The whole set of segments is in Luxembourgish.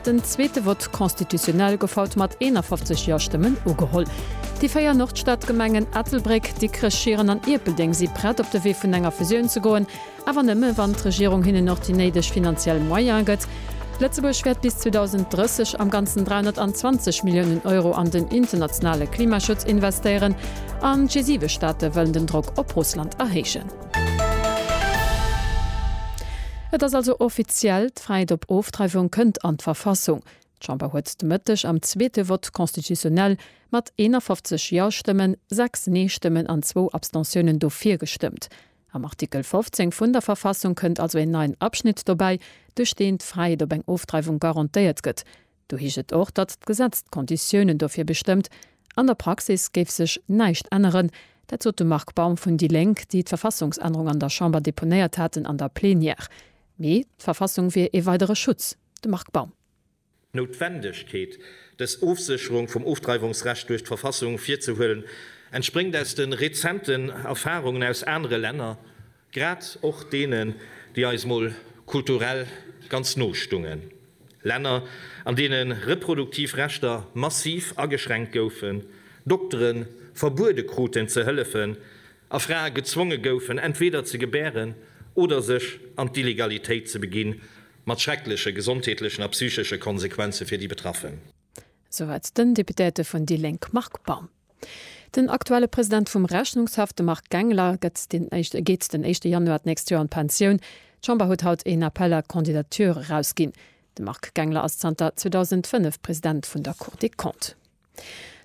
Den zweete Vote constitutionnel gouf haut mat 51 Ja-Stëmmen ugeholl. Déi véier Nordstadgemengen Ettelbréck, Dikrech, Schieren an Ierpeldeng si prett op de Wee vun enger Fusioun ze goen, awer nëmme wann d'Regierung hinnen och déi néideg finanziell Moyene gëtt. Lëtzebuerg wäert bis 2030 am Ganzen 320 Milliounen Euro an den internationale Klimaschutz investéieren an d'G7 Staate wëllen den Drock op Russland erhéijen. Et ass also offiziell. D'Fräiheet op Ofdreiwung kënnt an d'Verfassung. D'Chamber huet de Mëtteg am zweete Vote constitutionnel mat 51 Ja-Stëmmen, 6 Nee-Stëmmen an zwou Abstentiounen dofir gestëmmt. Am Artikel 15 vun der Verfassung kënnt also een neien Abschnitt dobäi, duerch deen d'Fräiheet op eng Ofdreiwung garantéiert gëtt. Do heescht et och, datt d'Gesetz d'Konditiounen dofir bestëmmt. An der Praxis géif sech näischt änneren. Dat sot de Marc Baum vun déi Lénk, déi d'Verfassungsännerung an der Chamber deponéiert haten an der Plenière. Mee d'Verfassung wier ee weidere Schutz. De Marc Baum. D'Noutwendegkeet, dës Ofsécherung vum Ofdreiwungsrecht duerch d'Verfassung virzehuelen, entspréngt aus de rezenten Erfarungen aus anere Länner, Grad och deenen, déi eis mol kulturell ganz no stungen. Länner, an deene reproduktiv Rechter massiv ageschränkt goufen, Doktere verbuede kruten ze hëllefen a Frae gezwonge goufen, entweder ze gebären oder sech an d'Illegalitéit ze beginn, mat schreckleche gesondheetlechen a psychesche Konsequenze fir déi Betraffen. Soweit den Deputéierte vun déi Lénk Marc Baum. Den aktuelle President vum Rechnungshaff, de Marc Gangler, gëtt den éischte geet den éischte Januar d'nächst Joer an d'Pensioun. D'Chamber huet haut een Appel à candidatures erausginn. De Marc Gangler ass zanter 2005 President vun der Cour des Comptes.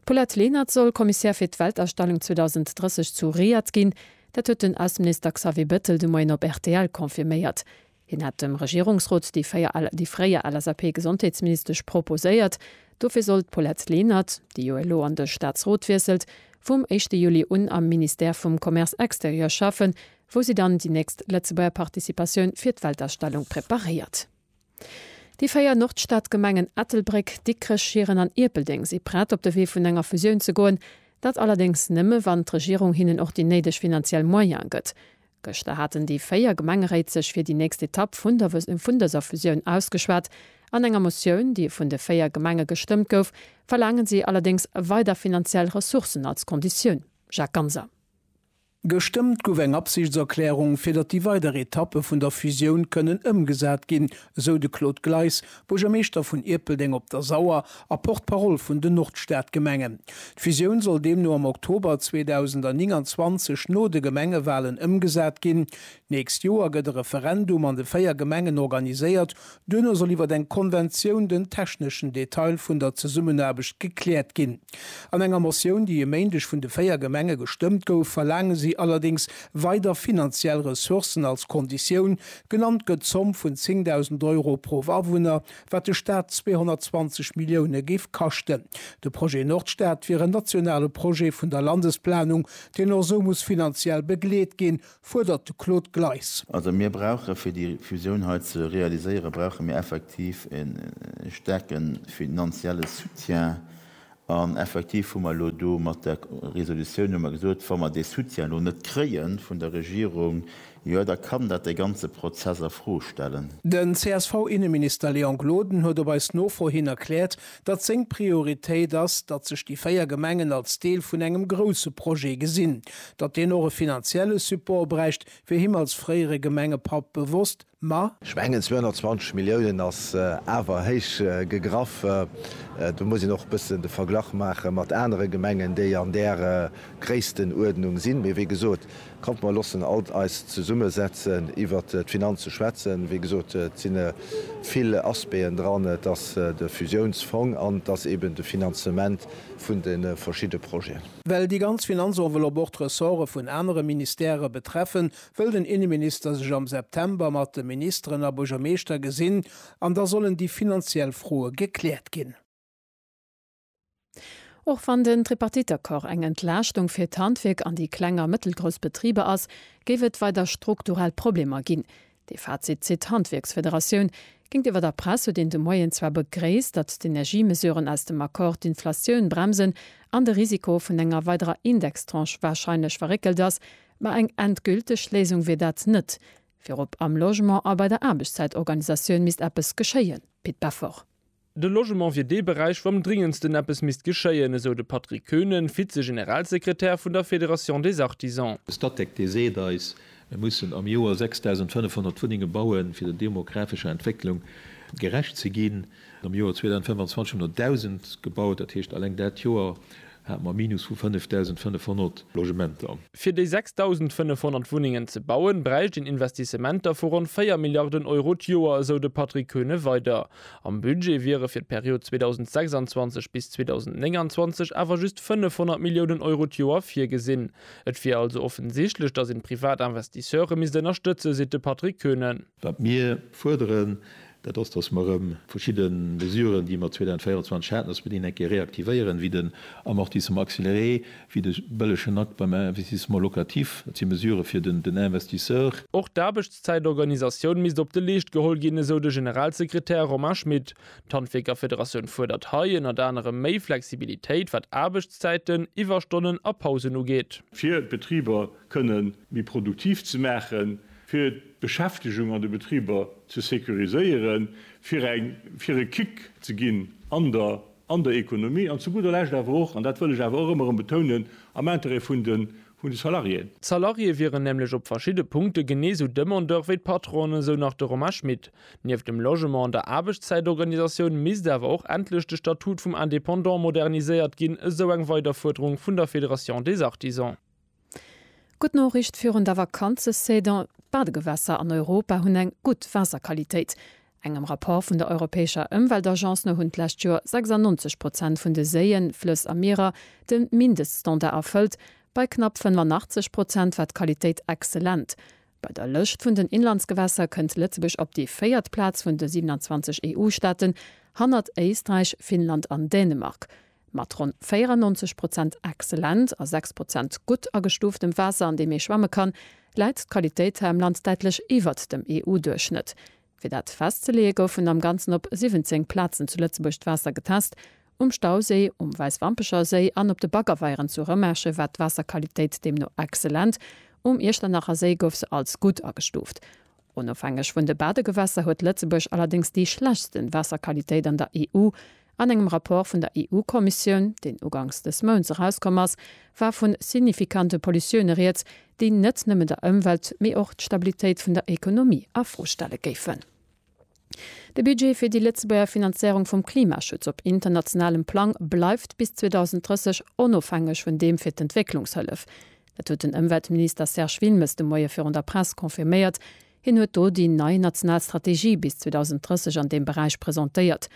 D'Paulette Lenert soll Commissaire fir d'Weltausstellung 2030 zu Riyadh ginn. Dat huet den Ausseminister Xavier Bettel de Moien op rtl confirméiert. Hien hat dem Regierungsrot déi fréier LSAP-Gesondheetsministesch proposéiert. Dofir soll d'Paulette Lenert, déi jo elo an de Staatsrot wiesselt, vum éischte Juli un am Ministère vum Commerce extérieur schaffen, wou si dann déi nächst Lëtzebuerger Participatioun fir d'Weltausstellung preparéiert. Déi véier Nordstadgemengen Ettelbréck, Dikrech, Schieren an Ierpeldeng si prett, op de Wee vun enger Fusioun ze goen. Dat allerdéngs nëmme, wann d'Regierung hinnen och déi néideg finanziell Moyene gëtt. Gëschter haten déi 4 Gemengeréit sech fir déi nächst Etapp vun dëser Fusioun ausgeschwat. An enger Motioun, déi vun de 4 Gemenge gestëmmt gouf, verlaangen si allerdéngs weider finanziell Ressourcen als Konditioun. Jacques Ganser. Gestëmmt gouf eng Absichtserklärung, fir datt déi weider Etappe vun der Fusioun kënnen ëmgesat ginn, esou de Claude Gleis, Buergermeeschter vun Ierpeldeng op der Sauer a Porte-parole vun den Nordstadgemengen. D'Fusioun soll deemno am Oktober 2029 no de Gemengewalen ëmgesat ginn. D'nächst Joer gëtt e Referendum an de véier Gemengen organiséiert. Duerno soll iwwer eng Konventioun den techneschen Detail vun der Zesummenaarbecht gekläert ginn. An enger Motioun, déi e Méindeg vun de véier Gemenge gestëmmt gouf, verlaange si allerdéngs weider finanziell Ressourcen als Konditioun, Genannt gëtt d'Zomm vun 10.000 Euro pro Awunner, wat de Staat 220 Millioune géif kaschten. De Projet Nordstad wier en nationale Projet vun der Landesplanung, deen och esou muss finanziell begleet ginn, fuerdert de Claude Gleis. Also mir brauche fir déi Fusioun hei ze realiséieren, brauche mir effektiv e staarke finanzielle Soutien An effektiv hu mer elo do mat der Resolutioun hu mer gesot, wa mer dee Soutien elo net kréie vun der Regierung, jo da kann dat dee ganze Prozess a Fro stellen. Den CSV-Inneminister Léon Gloden huet op eis Nofro hin erkläert, datt seng Prioritéit ass, datt sech déi véier Gemengen als Deel vun engem grousse Projet gesinn. Datt deen och e finanzielle Support bräicht, wier him als fréiere Gemengepapp bewosst. Ma. Ech mengen 220 Milliounen ass awer héich gegraff. Do muss een och e bëssen de Verglach maache mat anere Gemengen, déi an där Gréisstenuerdnung sinn. Mee wéi gesot, kommt mer loossen alt eis zesummesetzen iwwert d'Finanze schwätzen. Wéi gesot, et si vill Aspecten dran. Et ass de Fusiounsfong an et ass eeben de Finanzement vun de verschidde Projeten. Well déi ganz Finanzenveloppe och d'Ressorte vun anere Ministèrë betreffen, wëll den Inneminister sech am September mat de Ministeren a Buergermeeschter gesinn an da sollen déi finanziell Froe gekläert ginn. Och wann den Tripartite-Accord eng Entlaaschtung fir d'Handwierk an déi kleng a mëttelgrouss Betriber ass, géif et weider strukturell Problemer ginn. Dee Fazit zitt d'Handwierksfederatioun. Géintiwwer der Press huet een de Moien zwar begréisst, datt d'Energiemesuren aus dem Accord d'Inflatioun bremsen an de Risiko vun enger weiderer Indextranche warscheinlech verréckelt ass, Mä eng endgülteg Léisung wier dat net. Virop am Logement a bei der Aarbechtszäitorganisatioun misst eppes geschéien, Pit Beffort. De Logement wier dee Beräich, wou am dringendsten eppes misst geschéien, esou de Patrick Koenen, Vize-Generalsekretär vun der Fédération des Artisans. De Statec, dee seet eis, mir mussen am Joer 6.500 Wunnenge bauen, fir der demografescher Entwécklung gerecht ze ginn. Am Joer 2025 hunn der 1.000 gebaut, dat heescht, eleng dat Joer hate mer e Minus vu 5.500 Logementer. Fir déi 6.500 Wunnengen ze bauen, bräicht een Investissementer vu ronn 4 Milliarden Euro d'Joer, esou de Patrick Koeune weider. Am Budget wiere fir d'Period 2026 bis 2029 awer just 500 Milliounen Euro d'Joer virgesinn. Et wier also offensichtlech, datt een d'privat Investisseure misst ënnerstëtzen, seet de Patrick Koeune. Wat mir fuerderen, dat ass, dass mer erëm verschidde Mesuren, déi mer 2024 haten, dass mer déi eng Kéier reaktivéieren, wéi den Amortissement accéléré, wéi de bëllegen Akt beim Investissement locatif. Dat si Mesurë fir den Investisseur. Och d'Aarbechtszäitorganisatioun misst op de Leescht geholl ginn, esou de Generalsekretär Romain Schmit. D'Handwierkerfederatioun fuerdert hei ënnert anerem méi Flexibilitéit, wat Aarbechtszäiten, Iwwerstonnen a Pausen ugeet. Fir d'Betriber kënnen méi produktiv ze maachen, fir d'Beschäftegung an de Betriber ze securiséieren, fir eng, fir e Kick ze ginn an der, an der Economie an zu gudder Lescht awer och, an dat wëll ech awer och ëmmer erëm betounen, am Intérêt vun de, vun de Salariéen. D'Salariée wieren nämlech op verschidde Punkte genee esou Demandeur wéi d'Patronen, esou nach de Romain Schmit. Nieft dem Logement an der Aarbechtszäitorganisatioun misst awer och endlech de Statut vum Indépendant moderniséiert ginn, esou eng weider Fuerderung vun der Fédération des Artisans. Gutt Noriicht virun der Vakanzesaison, D'Badegewässer an Europa hunn eng gutt Waasserqualitéit. Engem Rapport vun der europäescher Ëmweltagence no hunn d'lescht Joer 96 Prozent vun de Séien, Flëss a Mierer de Mindeststandard erfëllt. Bei knapp 85 Prozent war d'Qualitéit exzellent. Bei der Lëscht vun den Inlandsgewässer kënnt Lëtzebuerg op déi véiert Plaz vun de 27 EU-Staaten, hannert Éisträich, Finnland an Dänemark. Mat ronn 94 Prozent excellent a 6 Prozent gutt agestuuftem Waasser, an deem ee schwamme kann, läit d'Qualitéit hei am Land däitlech iwwert dem EU-Duerchschnëtt. Fir dat festzeleeë goufen am Ganzen op 17 Plazen zu Lëtzebuerg d'Waasser getest, um Stauséi, um Wäiswampecher Séi an op de Baggerweieren zu Rëmerschen war d'Waasserqualitéit deemno excellent, um Iechternacher Séi gouf se als gutt agestuuft. Onofhängeg vun de Badegewässer huet Lëtzebuerg allerdéngs déi schlechtsten Waasserqualitéit an der EU. An engem Rapport vun der EU-Kommissioun, deen ugangs dës Mounts erauskomm ass, war vun signifikante Pollutioune rieds, déi net nëmmen der Ëmwelt, mee och d'Stabilitéit vun der Ekonomie a Fro stelle géifen. De Budget fir déi Lëtzebuerger Finanzéierung vum Klimaschutz op internationalem Plang bleift bis 2030 onofhängeg vun deem fir d'Entwécklungshëllef. Dat huet den Ëmweltminister Serge Wilmes de Moie virun der Press confirméiert. Hien huet do déi nei national Strategie bis 2030 an deem Beräich presentéiert.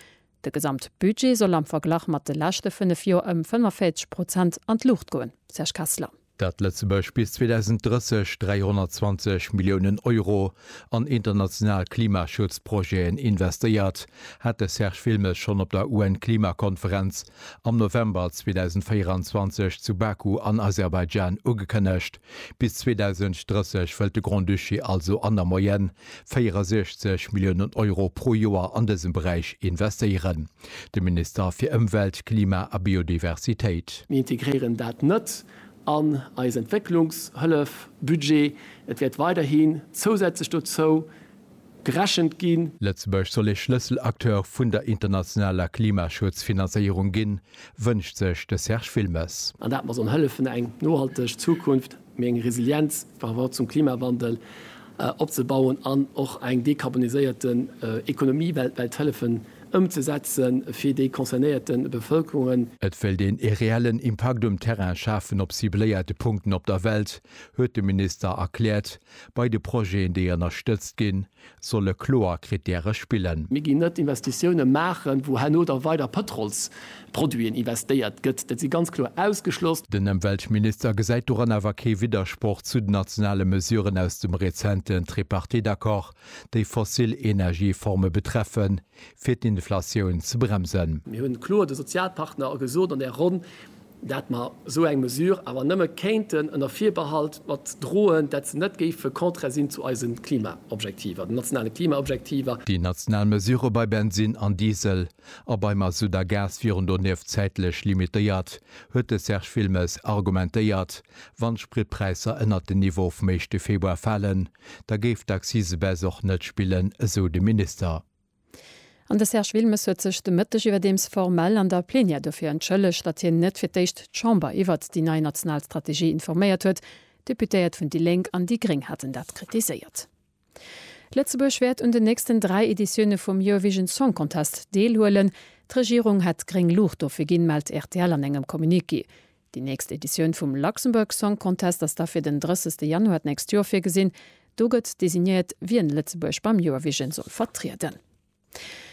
De Gesamtbudget soll am Verglach mat de leschte fënnef Joer ëm 45 Prozent an d'Luucht goen. Serge Kessler. dat Lëtzebuerg bis 2030 320 Milliounen Euro an international Klimaschutzprojeten investéiert, hat de Serge Wilmes schonn op der UN-Klimakonferenz am November 2024 zu Baku an Aserbaidschan ugekënnegt. Bis 2030 wëllt de Grand-Duché also an der Moyenne 64 Milliounen Euro pro Joer an dësem Beräich investéieren. De Minister fir Ëmwelt, Klima a Biodiversitéit. Mir integréieren dat net an eis Entwécklungshëllefbudget. Et wäert weiderhi zousätzlech dozou gerechent ginn. Lëtzebuerg soll ee Schlësselacteur vun der internationaler Klimaschutzfinanzéierung ginn, wënscht sech de Serge Wilmes. An dat mer sollen hëllefen, eng nohalteg Zukunft méi eng Resilienz par rapport zum Klimawandel opzebauen an och eng dekarboniséierte Ekonomie weltwäit hëllefen ëmzesetzen fir déi concernéierte Bevëlkerungen. Et wéilt een ee reellen Impakt um Terrain schafen op cibléierte Punkten op der Welt, huet de Minister erkläert, bei de Projeten, déi ënnerstëtzt ginn. solle kloer Krittäre spillen. Mir ginn net Investitiounen maachen, wou herno da weider Pëtrolsproduiten investéiert gëtt. Dat si ganz kloer ausgeschloss. Den Ëmweltminister gesäit doran awer kee Widdersproch zu den nationale Mesuren aus dem rezenten Tripartite-Accord, déi fossil Energieforme betreffen, fir d'Inflatioun ze bremsen. Mir hunn kloer de Sozialpartner gesot an där Ronn, dat mer esou eng Mesure awer nëmme kéinten ënner Virbehalt mat droen, dat se net géife contraire sinn zu eise Klimaobjektiver, den nationale Klimaobjektiver. Déi national Mesure bei Bensinn an Diesel a bei Mazout a Gas wieren donieft zäitlech limitéiert, huet de Serge Wilmes argumentéiert. Wann d'Spritpräisser ënnert den Niveau vum éischte Februar falen, da géif d'Accise-Baisse och net spillen, esou de Minister. An de Serge Wilmes huet sech de Mëtteg iwwerdeems formell an der Plenière dofir entschëllegt, datt hien net fir d'éischt d'Chamber iwwert déi nei national Strategie informéiert huet. D'Deputéiert vun déi Lénk an déi Gréng haten dat kritiséiert. Lëtzebuerg wäert un den nächsten dräi Editioune vum Eurovision Song Contest deelhuelen. D'Regierung hätt gréng Luucht dofir ginn, mellt rtl an engem Communiqué. Déi nächst Editioun vum Luxembourg Song Contest ass da fir den 30 Januar d'nächst Joer virgesinn. Do gëtt designéiert, wien Lëtzebuerg beim Joerwijen soll vertrieden.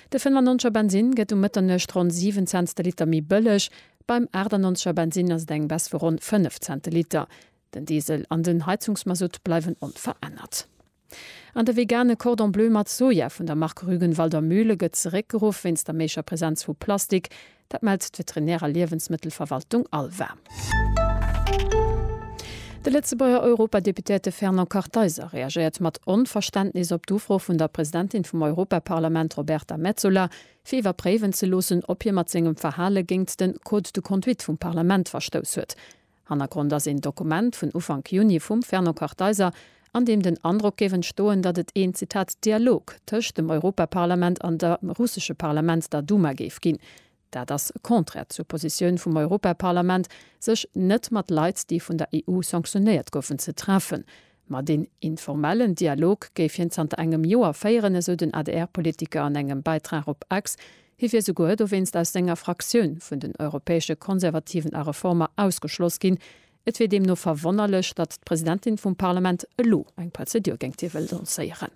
De 95 er Bensinn gëtt um Mëtternuecht ronn 7 Cents de Liter méi bëlleg. Beim 98 er Bensinn ass et eng Baisse vu ronn 5 Cent de Liter. Den Diesel an den Heizungsmasutt bleiwen onverännert. An de vegane Cordon Bleu mat Soja vun der Mark Rügenwalder Mühle gëtt zeréckgeruff wéinst der méiger Presenz vu Plastik. Dat mellt d'Veterinär a Liewensmëttelverwaltung Alva. De Lëtzebuerger Europadeputéierte Fernand Kartheiser reagéiert mat Onverständnis op d'Ufro vun der Presidentin vum Europaparlament Roberta Metsola, fir iwwerpréiwen ze loossen, ob hie mat sengem Verhale géingt de Code de conduite vum Parlament verstouss huet. Hannergrond ass een Dokument vun Ufank Juni vum Fernand Kartheiser, an deem den Androck géif entstoen, datt et een, Zitat, Dialog tëscht dem Europaparlament an der russesche Parlament, der Duma, géif ginn. Dat ass contraire zur Positioun vum Europaparlament, sech net mat Leit, déi vun der EU sanctionéiert goufen, ze treffen. Ma deen informellen Dialog géif hien zanter engem Joer féieren, esou den ADR-Politiker an engem Bäitrag op X. Hie wier souguer dowéinst aus senger Fraktioun vun den Europäesche Konservativen a Reformer ausgeschloss ginn. Et wier deemno verwonnerlech, datt d'Presidentin vum Parlament elo eng Prozedur géingt hie wëll lancéieren.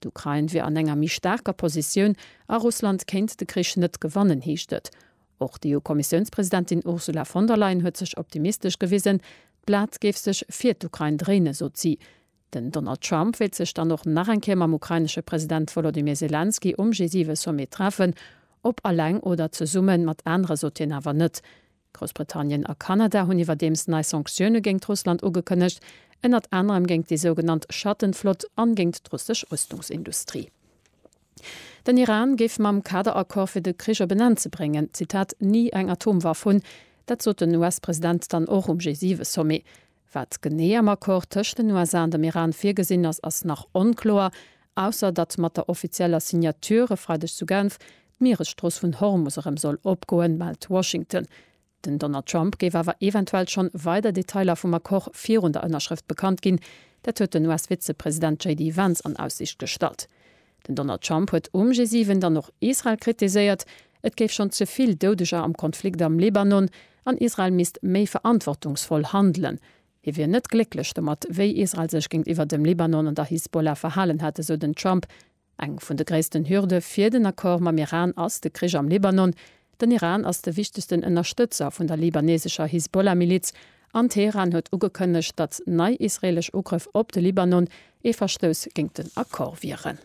D'Ukrain wier an enger méi staarker Positioun a Russland kéint de Krich net gewannen, heescht et. Och d'EU-Kommissiounspresidentin Ursula von der Leyen huet sech optimistesch gewisen. D'Blat géif sech fir d'Ukrain dréinen, sot si. Den Donald Trump wéilt sech dann och nach eng Kéier mam ukrainesche President Wolodymyr Selenskyj um G7-Sommet treffen. Ob alleng oder zesumme mat anere sot hien awer net. Groussbritannien a Kanada hunn iwwerdeems nei Sanktioune géingt Russland ugekënnegt, ënnert anerem géingt déi sougenannt Schattenflott an géingt d'russesch Rüstungsindustrie. Den Iran géif mam Kaderaccord fir de Krich op en Enn ze bréngen, Zitat, ni eng Atomwaff hunn. Dat sot den US-President dann och um G7-Sommet. Wat genee am Accord tëscht den USA an dem Iran virgesinn ass, ass nach onkloer, ausser datt mat der offizieller Signature e Freideg zu Genf d'Mieresstrooss vun Hormus erëm soll opgoen, mellt Washington. Den Donald Trump géif awer eventuell schonn weider Detailer vum Accord virun der Ënnerschrëft bekannt ginn. Dat huet den US-Vizepresident JD Vance an Aussiicht gestallt. Den Donald Trump huet um G7 dann och Israel kritiséiert, et géif schonn ze vill Doudeger am Konflikt am Libanon an Israel misst méi verantwortungsvoll handelen. Hie wier net glécklech domat, wéi Israel sech géintiwwer dem Libanon an der Hisbollah verhalen hätt, esou den Trump. Eng vun de gréissten Hürde fir den Accord mam Iran ass de Krich am Libanon. Den Iran ass de wichtegsten Ënnerstëtzer vun der libanesescher Hisbollah-Miliz an Teheran huet ugekënnegt, datt nei israeelesch Ugrëff op de Libanon ee Verstouss géint den Accord wieren.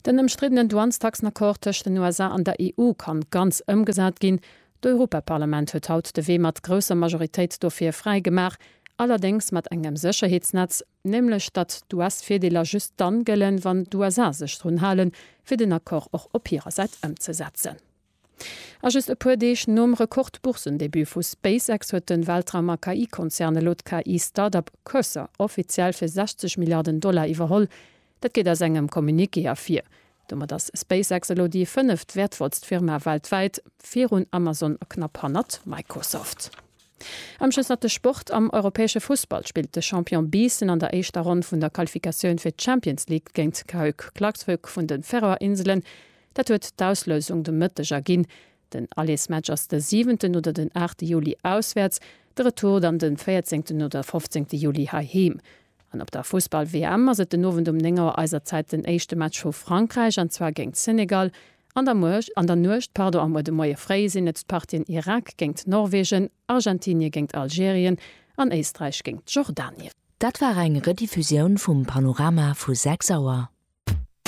Den ëmstriddenen Douanestaxen-Accord tëscht den USA an der EU ka ganz ëmgesat ginn. D'Europaparlament huet haut de Wee mat grousser Majoritéit dofir fräi gemaach, allerdéngs mat engem Sécherheetsnetz, nämlech datt d'US-Virdeeler just dann gëllen, wann d'USA sech drun halen, fir den Accord och op hirer Säit ëmzesetzen. A just e puer Deeg nom Rekord-Boursendebut vu SpaceX huet de Weltraum a KI-Konzern elo d'KI-Startup Cursor offiziell fir 60 Milliarden Dollar iwwerholl. Dat geet aus engem Communiqué ervir. Domat ass SpaceX elo déi fënneft wäertvollst Firma weltwäit, virun Amazon a knapp hannert Microsoft. Amschësserte Sport, Am europäesche Fussball spillt de Champion Biissen an der éischter Ronn vun der Qualifikatioun fir d'Champions League géint Cahuc Klaksvik vun de Färöer Inselen. Dat huet d'Auslousung de Mëtteg erginn. Den Allesmatch ass de siwenten oder den aachte Juli auswäerts, de Retour dann de véierzéngten oder fofzéngte Juli heiheem. An op der Fussball-WM ass et den Owend um 9 Auer eiser Zäit den éischte Match vu Frankräich, an zwar géint Senegal, an der Muecht, an der Nuecht, pardon, a muer de Moie fréi sinn et d'Partien Irak géint Norwegen, Argentinie géint Algerien an Éisträich géint Jordanien. Dat war eng Rediffusioun vum Panorama vu 6 Auer.